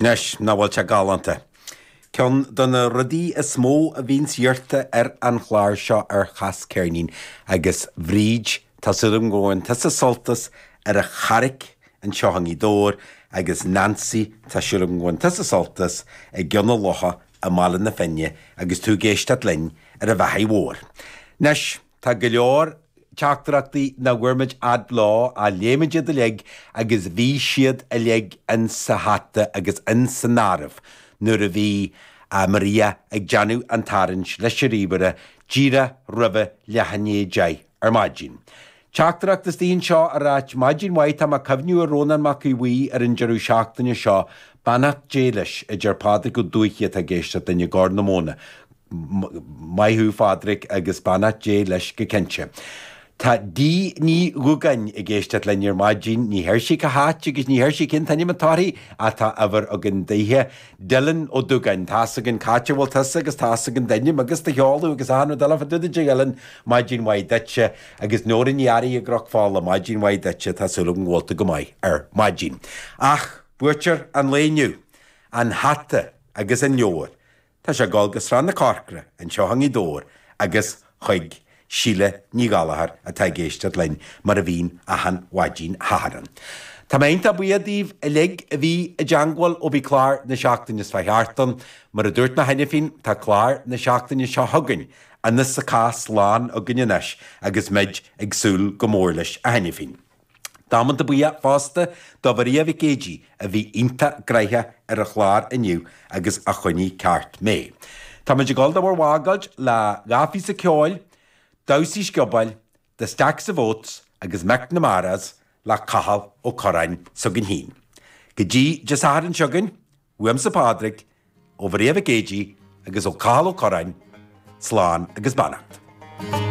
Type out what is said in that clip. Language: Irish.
Anois, nach bhfuil sé galánta? Ceann de na rudaí is mó a bhíonns iarrta ar an chlár seo ar Cas Ceirnín agus Bhríd, tá súil agam go bhfaigheann tusa sult as, ar an Charraic anseo i nGaoth Dobhair, agus Nancy, tá súil agam go bhfaigheann tusa sult as, i gCionn an Locha i mBaile na Finne, agus tú ag éisteacht linn ar an bhealach mhór. Anois. Tá go leor teachtaireachtaí nach bhfaighimid fhad leo ach léimid iad uilig agus bhí siad uilig insa hata agus insan áireamh nuair a bhí Maria ag déanamh an tarraingt leis an ríomhaire díreach roimh leath i ndiaidh a deich ar maidin. Teachtaireacht istigh anseo ag ráit Maidin mhaith, tá mé ag cuimhniú ar Rónán Mac Aodh Bhuí ar an deireadh seachtaine seo, beannacht Dé leis, a deir Pádraig Ó Dúiche atá ag éisteacht linn i gCorr na Móna. Maith thú Phádraig agus beannacht Dé leis go cinnte. Tá D Ní Dhúgáin ag éisteacht linn ar maidin, ní deir sí cá háit agus ní deir sí cén t-ainm atá uirthi ach tá uimhir againn daoithe. Dylan Ó Dúgáin, tá's againn c'áit a bhfuil tusa agus tá's againn d'ainm agus do sheoladh agus achan rud eile fá dtaobh díot a Dylan, maidin mhaith duitse agus Nóra Ní Fhearraigh i gCnoc Fola, maidin mhaith duitse, tá súil agam go bhfuil tú go maith ar maidin. Ach buaiteoir an lae inniu, an hata agus an leabhar, Tá sé ag dul go Srath na Corcra, anseo i nGaoth Dobhair agus chuig Síle Ní Ghallachair atá ag éisteacht linn mar a bhíonn achan mhaidín Shathairn. Tá mé iontach buíoch daoibh uilig a bhí i dteangmháil ó bhí clár na seachtaine seo thart ann. Mar a dúirt mé cheana féin, tá clár na seachtaine seo chugainn, an hosce is lán againn anois agus muid ag súil go mór leis cheana féin. Damanta buíoch fosta do Mharia Mhic Géidigh a bhí iontach gnoitheach ar an chlár inniu agus a choinnigh ceart mé. Táimid ag dul do bhur bhfágáilt le dhá phíosa ceoil, damhsaí sciobóil, The Stack of Oats agus McNamara's le Cathal Ó Curráin s'againn féin. Go dtí Dé Sathairn seo chugainn, uaimse Pádraig, ó Mharia Mhic Géidigh agus ó Chathal Ó Curráin, slán agus beannacht.